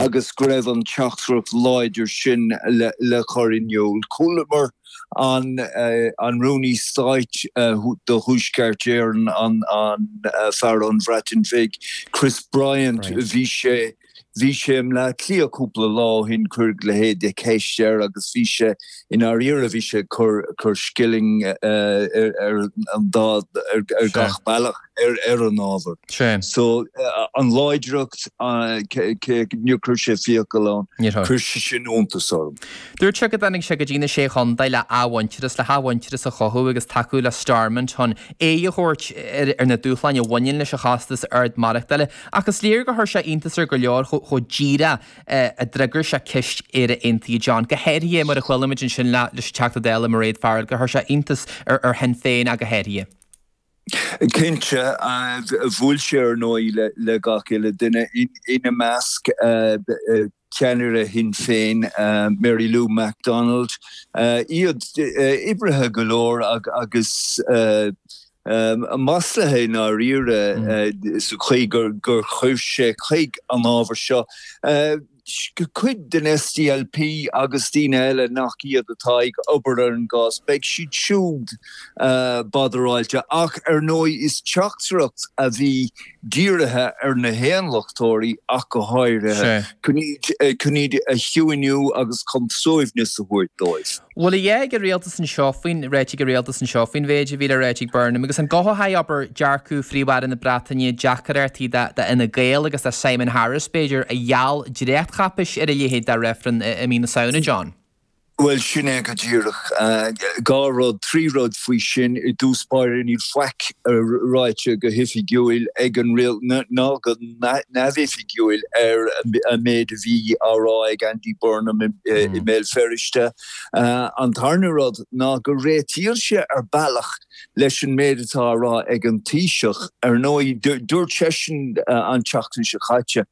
agus go raibh an teachtaireacht láidir sin le cur in iúl. Chualamar an Rúnaí Stáit do Thuaisceart Éireann, an fear ón Bhreatain Bhig, Chris Bryant, bhí sé i mBleá Cliath cúpla lá ó shin, cuireadh leithéid de cheist air agus bhí sé I ndáiríre bhí sé ag cur scilling i ndá ar gach bealach ar an ábhar so an láidreacht níor chuir sé fiacail ann, chuir sé sin iontas orm. Dúirt sé go dtáinig sé go dtí na Sé Chontae le hathmhuintearas, le hathmhuintearas a chothú agus tacú le Stormont chun aghaidh a thabhairt ar na dúshláin a bhaineann leis an chostas ard maireachtála. Ach is léir gur chuir sé iontas ar go leor chomh díreach a d'fhreagair sé ceist Éire Aontaithe John. Go háirithe mar a chuala muid ansin leis an Teachta Dála Mairéad Farrell gur chuir sé iontas ar Shinn Féin ach go háirithe. Cinnte, bhuail sé ar ndóigh le gach uile dhuine, ina measc ceannaire Shinn Féin Mary Lou McDonald. Iad oibrithe go leor agus maslaithe i ndáiríre sa chaoi gur chuaigh sé chuig an ábhar seo cuid den SDLP agus daoine eile nach iad, atá ag obair ar an gcás. Beidh siad siúd badaráilte ach ar ndóigh is teachtaireacht a bhí dírithe ar na hAontachtóirí ach go háirithe, chun iad a chiúiniú agus chun suaimhneas a thabhairt dóibh. Bhfuil aon cheo ag an rialtas anseo faoin, ráite ag an rialtas anseo faoin mhéid a bhí le rá ag Burnham agus an gcothódh a dhearcadh, abair dearcadh Phríomh-Aire na Breataine deacrachtaí do d'Fhine Gael agus do Simon Harris, b'fhéidir, a gheall dréachtcháipeis ar a leithéid de reifreann i mí na Samhna, John? Bhuel, sin é go díreach. Dhá rud, trí rud faoi sin, i dtús báire níl faic ráite go hoifigiúil ag an rial, nó go. neamhoifigiúil ar an méid a bhí á rá ag Andy Burnham i mBéal Feirste. An tarna rud ná go réitíonn sé ar bealach leis an méid atá á rá ag an Taoiseach. Ar ndóigh, dúirt seisean an tseachtain seo caite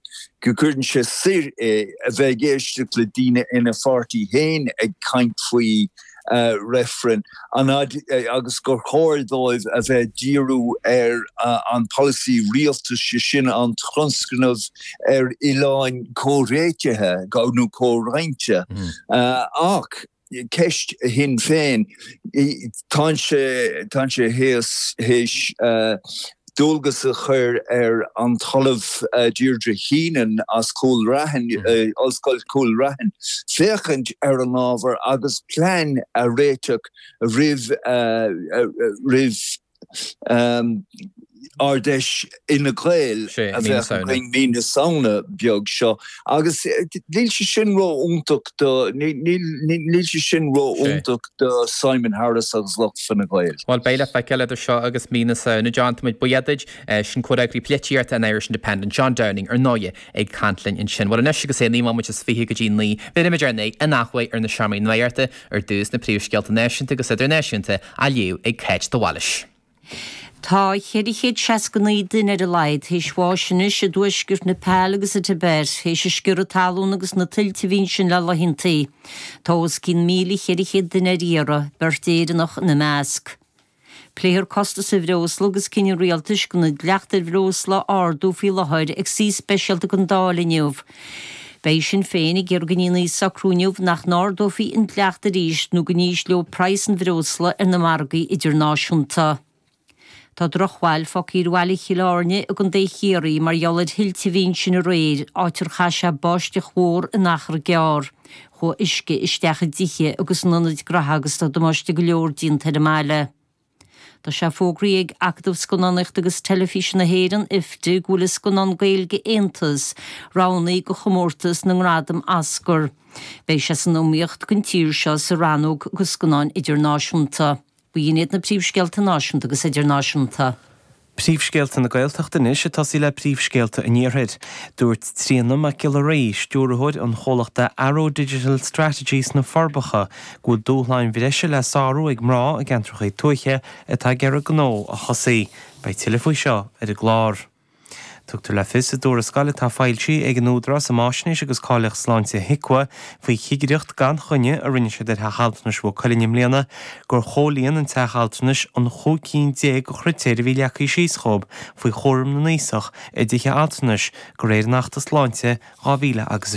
go gcuireann sé soir é a bheith ag éisteacht le daoine ina pháirtí féin ag caint faoi reifreann agus gur chóir dóibh a bheith ag díriú ar an pholasaí rialtais, sé sin an tionscnamh ar oileán comhréitithe nó comhroinnte. Ach ceist Shinn Féin, tá sé théis dualgas a chur ar an tOllamh Deirdre Heenan as Cúil Raithin, Ollscoil Chúil Raithin, féachaint ar an ábhar agus plean a réiteach roimh Ard-Fheis Fhine Gael a bheidh againn mí na Samhna beag seo. Agus níl sé sin ró-iontach do, níl sé sin ró-iontach do Simon Harris agus Fine Gael. Bhuel, beidh le feiceáil idir seo agus mí na Samhna. John, táimid buíoch duit. Sin comhfhreagraí polaitíochta an Irish Independent, John Downing, ar ndóighe, ag caint linn ansin. Bhuel, anois agus é naoi mbomaite is fiche go dtí naoi, bhéarfaimid ár n-aghaidh ar na seomraí nuachta, ar dtús, na príomhscéalta náisiúnta agus idirnáisiúnta á léamh ag Cáit de Bhailís. Tá 469 duine ar a laghad théis bháis anois i dtuaisceart Nepal agus sa Tibet théis sciorradh talún agus na tuilte a bhí ansin le laethanta. Tá os cionn 1,400 duine ar iarraidh, beirt Éireannach ina measc. Pléifear costas an bhreosla agus cinneadh an rialtais gan an dleacht ar bhreosla a ardú faoi láthair ag suí speisialta den Dáil inniu. Beidh Sinn Féin ag iarraidh go ndéanfaí socrú inniu nach n-ardófaí an dleacht arís nó go n-ísleodh praghas an bhreosla ar na margaí idirnáisiúnta. Tá drochbhail fágtha ar bhaile Chill Airne i gContae Chiarraí mar gheall ar thuilte a bhí ansin aréir, áit ar chaith sé báisteach mhór in achar gearr. Chuaigh uisce isteach i dtithe agus in ionaid gnótha agus tá damáiste go leor déanta ar an mbaile. Tá sé fógraí ag Acadamh Scannánaíochta agus Teilifíse na hÉireann, IFTA, go bhfuil an scannán Gaeilge Aontas, roghnaí go chomórtas na ngradam Oscar. Beidh sé san iomaíocht don tír seo sa rannóg do scannáin idirnáisiúnta. B'iad sin iad na príomhscéalta náisiúnta agus idirnáisiúnta. Príomhscéalta na Gaeltachta anois ag tosaí le príomhscéalta an Iarthair. Dúirt Tríona Mac Giolla Rí, stiúrthóir an chomhlachta Arrow Digital Strategy sna Forbacha, go bhfuil dúshláin bhreise le sárú ag mná i gceantracha tuaithe atá ag iarraidh gnó a thosaí. Beidh tuilleadh faoi seo ar an gclár. Tugtar le fios i dtuarascáil atá foilsithe ag an Údarás um Fháisnéis agus Cáilíocht Sláinte, HIQA, faoi chigireacht gan choinne a rinne siad ar Theach Altranais Mhaigh Cuilinn i mbliana gur chomhlíon an teach altranais na cúig cinn déag de chritéir a bhí leagtha síos dhóibh faoi chúram na n-aosach i dtithe altranais de réir an Achta Sláinte 2006.